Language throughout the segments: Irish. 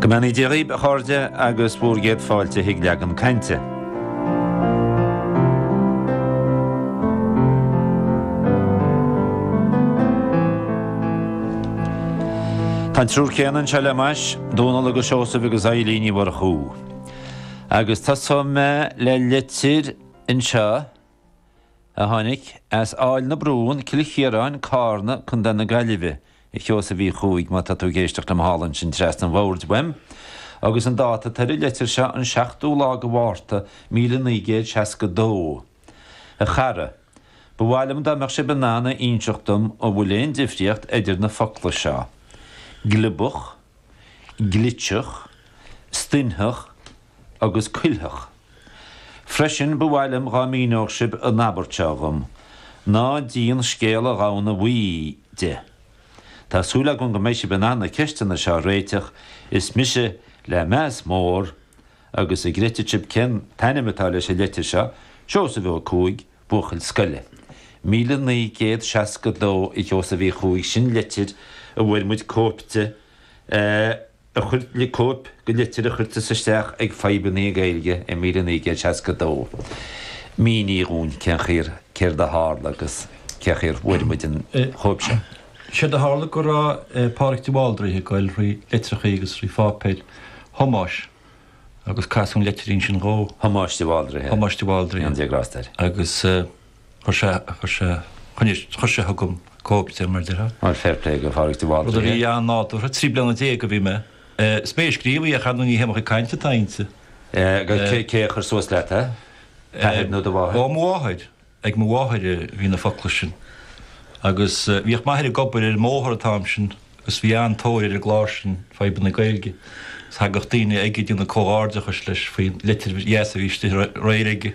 Go mbeannaí Dia dhaoib, a chairde, agus bhur gcéad fáilte chuig leagan cainte. Tá an triúr céanna anseo le m'ais, Dónal agus Seosamh agus Eibhlín Ní Mhurchú. Agus tosóidh mé le litir anseo. a tháinig as Aill na Brún, Cill Chiaráin, Carna, Contae na Gaillimhe, a Sheosaimh Uí Chuaig, má tá tú ag éisteacht liom thall ansin trasna an bhoird uaim, agus an dáta atá ar an leitir seo, an seachtú lá de Mhárta, míle naoi gcéad seasca dó. A chara. Ba mhaith liom dá mbeadh sibh in ann a inseacht dom an bhfuil aon difríocht idir na focla seo. Gliobach. Gliteach. Stoithneach. agus cuiltheach. Freisin ba mhaith liom dhá míneódh sib an abairt seo dhom, Ná díon scéal an ghamhna bhuí de. Tá súil agam go mbeidh sib in ann na ceisteanna seo a réiteach is mise le meas mór agus an gcreidfidh sib cén t-ainm atá leis an leitir seo, Seosamh Ó Cuaig, buachaill scoile. Míle naoi gcéad seasca dó a Sheosaimh Uí Chuaig sin leitir a bhfuair muid cóip di a chuir tú, cóip de litir a chuir tusa isteach ag Fadhbanna Gaeilge i míle naoi gcéad seasca dó. Mínigh dhúinn cén chaoi ar, céard a tharla agus cé chaoi a bhfuair muid an chóip seo. Séard a tharla go raibh Pádraig de Bhaldraithe ag goil thrí litreacha agus thrí pháipéir Thomáis agus casadh an leitirín sin dhó. Thomáis de Bhaldraithe. Thomáis de Bhaldraithe. Go ndéana Dia grásta air. Agus. Chuir sé, chuir sé, choinnigh, chuir sé chugam cóip de, mar a déarfá. Bhuel, fair play go Phádraig de Bhaldraithe. Rud a bhí an-nádúrtha, trí bliana déag a bhí mé. Is mé a scríobh í, ach ar ndóigh ní hé mo chuid cainte atá inti. Agus cé a chuir suas leat é? T'athair nó do mháthair? Ó, mo mháthair, ag mo mháthair a bhí na focla sin. Agus bhíodh m'athair ag obair ar an mbóthar an t-am sin agus bhí an-tóir ar an gclár sin, Fadhbanna Gaeilge, agus thagadh daoine aige ag déanamh comhghairdeachais leis faoin litir dheas a bhí istigh aréir aige.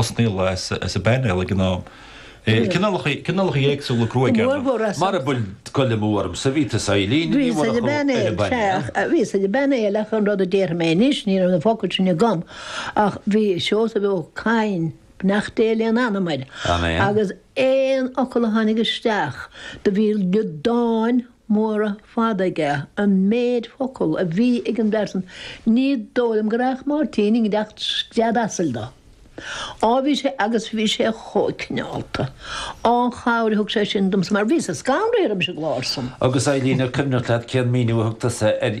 is níl a fhios ag an bpainéal ag an am. Cineálacha éagsúla gruaige ar ndóigh. Mara bhfuil dul amú orm bhí tusa, a Eibhlín Ní Mhurchú ar an bpainéal. Bhíos ar an bpainéal ach an rud a déarfaidh mé anois, ní raibh na focail sin agam ach bhí Seosamh Ó Cadhain, beannacht Dé lena anam, agus aon fhocal a tháinig isteach do bhí liodáin mhóra fada aige, an méid focal a bhí ag an bhfear san, ní dóigh liom go raghadh Máirtín i ngiorracht scread asail dó. Á bhí sé, agus bhí sé chomh cineálta, ó, an chabhair a thug sé sin domsa mar bhíos-sa scanraithe roimis an gclár san. Agus a Eibhlín, an cuimhneach leat cén míniú a thug tusa ar.